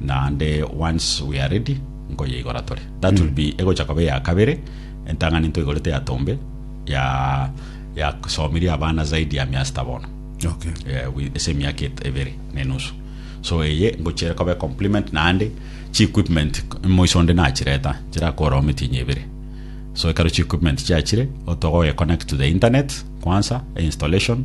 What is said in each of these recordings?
naende once we are ready nkoyeigora tore that will be egocha koba eya kabere entang'ani ntoigorete ya tombe ya ya somirie abana zaidi ya miasita bono Okay. eh, wi- ase emiaka et- ebere na enusu so eye ngochere kobe compliment naende chi equipment moiso onde nachireta chirakorao mitinyi ebere so ekero chi equipment chiachire otogo connect to the internet kwanza installation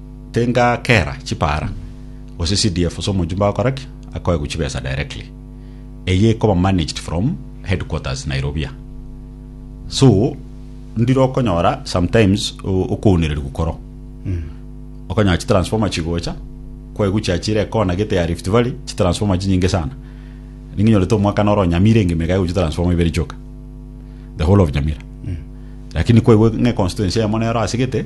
Tingakera chipara, gose CDF ase omonchumba agokora ki, akoegwa chibesa directly. Eye ekoba managed from headquarters Nairobia. So, ndire okonyora sometimes o- okounererigwa koro. Okonyora chitransformer chigocha, kwaigwa chiachire ekona gete ya Rift Valley, chitransformer chinyinge sana. Ninginyorete omwaka noro Nyamira engima ekaigwa chitransformer ibere chioka. The whole of Nyamira. Lakini kwaigwa ng'a econstituency eyemo nero ase gete,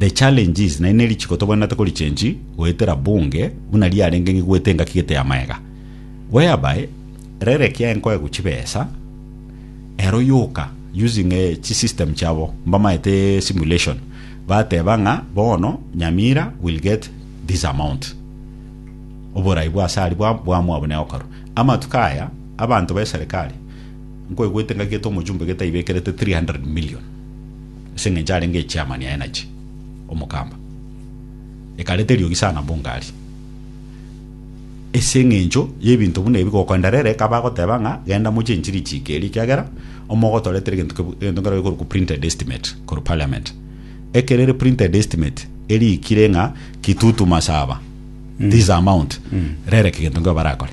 The challenge is naende nerichiko tobwenerete korichange goetera Bunge buna riarenge ng'e goeta engaki gete ya maega whereby rere ekiagera nkoegwa chibesa ero yoka using eh, chi system chiabo mbamaete simulation bateba ng'a bono Nyamira will get this amount oborai bwa asari bwa bwamwabo ne okaro amatuko aya abanto be serikali nkoigwete ngaki gete omojumbe gete aibekerete 300 million Ase engencho arenge echairman ya Energy, Omokamba, ekareta eriogi sana Mbungari ase engencho y'ebinto buna ebi gokoendera ere ekaba agoteba ng'a genda mochie enchiri ichiika eria ekiagera omogotoretera egento kebu- egento nkero gekorokwa printed estimate korwa parliament ekero ere printed estimate eriikire ng'a kitutu masaba this amount rereka egento nkeo barakore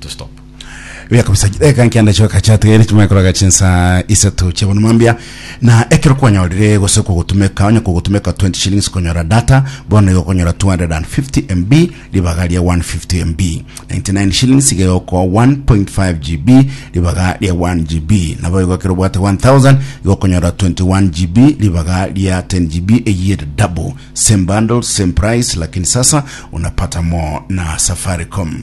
to stop Buya kabisa chideka nkianda chio kachatugere chimwe koraga chinsa isato chebona mambia na ekero kwanyorire gose kogotumeka onye kogotumeka 20 shillings konyora data bono igo konyora 250 MB ribaga ria 150 MB 99 shillings igo ko 1.5 GB ribaga ria 1 GB nabo igo ekero bwate 1000 igo konyora 21 GB ribaga ria 10 GB eye double same bundle same price lakini sasa unapata more na Safaricom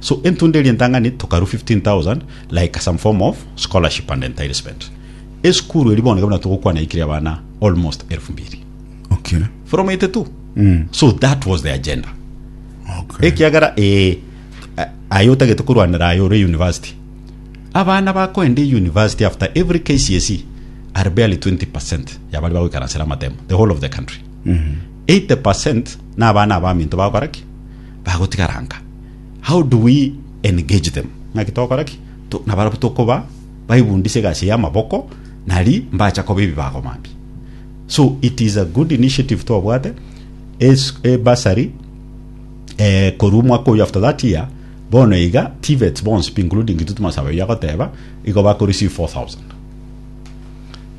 So entunda eria entang'ani tokarwa 15,000 like some form of scholarship and enticement. Esukuru eri bono buna togokwana ikire abana almost elfu mbiri Okay. from 82. Mm. So that was the agenda. Okay. ekiagera eh, a- aye otagete korwanera aye ore university abana bakoenda university after every kcse are barely 20 yabari bagoikaransera amatemo the whole of the country 80 na abana abaminto bakoraki bagotigara nka? How do we engage them? Ng'aki togokora ki to, na barabwo tokoba baibundise egasi y'amaboko nari mbacha koba ebibago mambia. So it is a good initiative twabwate es- e bursary eh, korwa omwaka oyo after that year bono iga TVETs bonsi pi including intwe tumasaba oyo agoteba igo bako receive 4000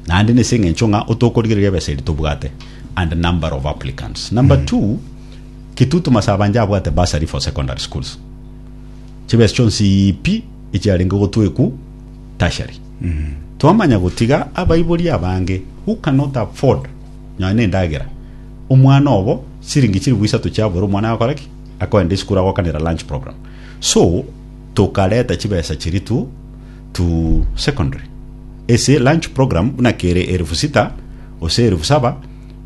naende nese eng'encho ng'a otokorigereria ebesa eri tobwate and number of applicants number two Kitutu Masabanje abwate bursary for secondary schools, chibesa chionsi pi echiarenge gotwekwu tertiary. Twamanya gotiga abaibori abange who cannot afford nonya na endagera, omwana obo siringi chilifu isato chiabora omwana agakora ki? Akoenda esukuru agokanera lunch program. So tokareta chibesa chiria to, to secondary. Ase lunch program buna kere elifu sita gose elifu saba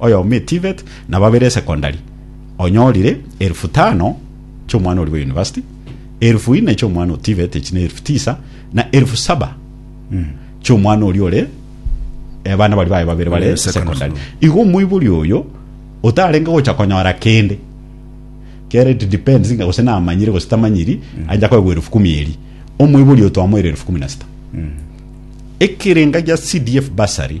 oyomo eTVET, na babere esekondari, onyorire elfu tano chi'omwana oria bwe university, elfu ine chi'omwana o TVET, echi ne elfu tisa, na elfu saba chi'omwana oria ore abana baria baye babere bare Eh, secondary secondary. school. Igo omoibori oyo otarenge gocha konyora kende kere it depends nga gose namanyire gose tamanyiri aja koegwa elfu kumi eri omoibori oyo twamoire elfu kumi na sita ekerenga gia CDF basari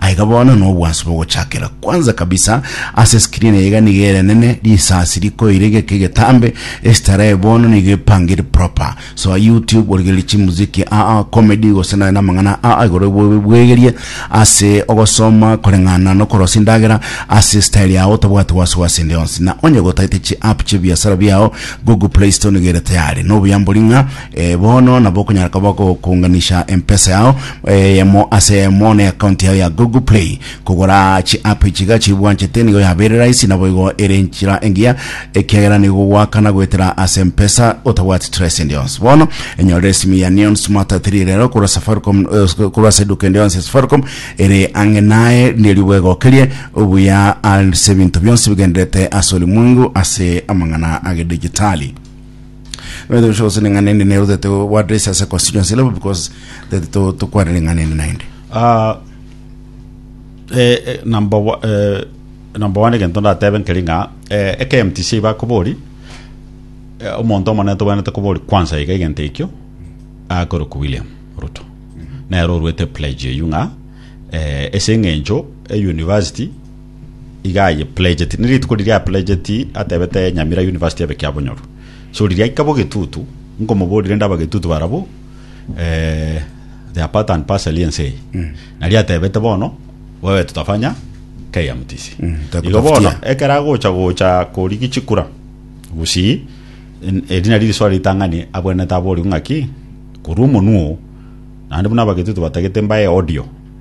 Aiga bono nobwansu bogochakera. Kwanza kabisa ase screen eye iga niga erenene, risasi rikoire geke getambe, estarehe bono niga epangire proper. So YouTube origereria chimuziki aa comedy gose naye namang'ana aa igoro bwe- bwegerie ase ogosoma koreng'ana nokorosia endagera ase style yao otabwati wasiwasi ende yonsi. Na onye gotaete chi app chibiasara biao Google Play Store niga ere tayari. Nobuyambori ng'a Ee, bono nabo okonyara koba ogokuunganisha empesa yao eyemo ase eyemo ne account yao ya Google Play. Kogora chi'app echi iga chibwanchete nigo yabeire rahisi naboigo ere enchera engiya ekiagera nigo goakana goetera ase empesa otabwati trace ende yonsi. Bono enyorera esimi ya Neon Smart 3 rero korwa Safaricom eh, korwa ase eduka ende yonsi ya Safaricom ere ang'e naye ndiyo ribuga egokerie obuya ase ebinto bionsi bigendererete ase olimwengu ase amang'ana agedijitali. Nonya shosi neng'ana ende nero that uh, what is as a constituency level because that to to kwana neng'ana ende naende. Ah, eh, eh, number one, eh, number one egento ndatebe nkeri ng'a eh, eke mtc ibakobori eh, omonto omonene tobwanete kobori kwansa iga egento ekio akorokwa william ruto nero orwete pledge eyio ng'a eh, ase eng'encho euniversity iga aye pledgeti ne rituko riria a pledgeti atebete nyamira university ebe kia bonyoru so riria aika bo getutu nkomoboria rende aba getutu barabo eh, they are part and parcel ense eye mm. naria atebete bono wewe tutafanya KMTC mm. igo bono ekera gocha gocha kori gichikura gusi erina riri swali tangani abwenete abori ngaki kuru munuo nandi buna abagetutu batagete mbaye audio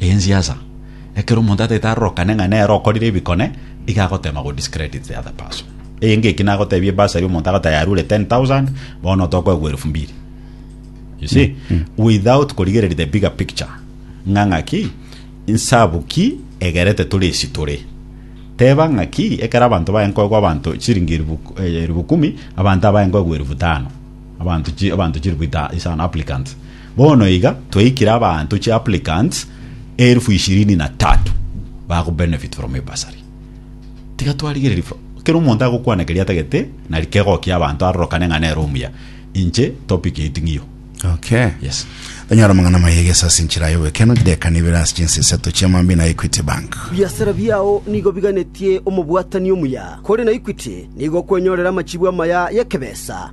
Ensiasa. Ekero omonto ataete arorokane ng'a nere okorire ebikone, iga agotema go discredit the other person. Eyenge eki nagotebia ebursary omonto agoteba yarure 10,000, bono tokoegwa elufu mbiri. You see? Without korigereria the bigger picture. Ng'a ng'aki, insabu ki egerete tore esi tore. Teba ng'aki, ekero abanto baye nkoegwa abanto chiringi elifu eh, elifu kumi, abanto abaye nkoegwa elifu tano. Abanto chi, abanto chilifu ita, isano applicants. Bono iga twaikire abanto chi applicants eelfu ishirini na tatu bago benefit from hii bursary. Tiga twarigereria fro kera omonto agokwana keria atagete nari kegokia abanto arorokane ng'a nere omuya. Inche topic yaito ng'iyo. Okay. Yes. Tonyora amang'ana amaya egeso ase enchera y'obekeno chidakika nibere ase chinsa isato chia mambia na Equity Bank. Biasara biao nigo biganetie omobwatani omuya, kore na Equity nigo okwenyorera amachibu amaya y'ekebesa.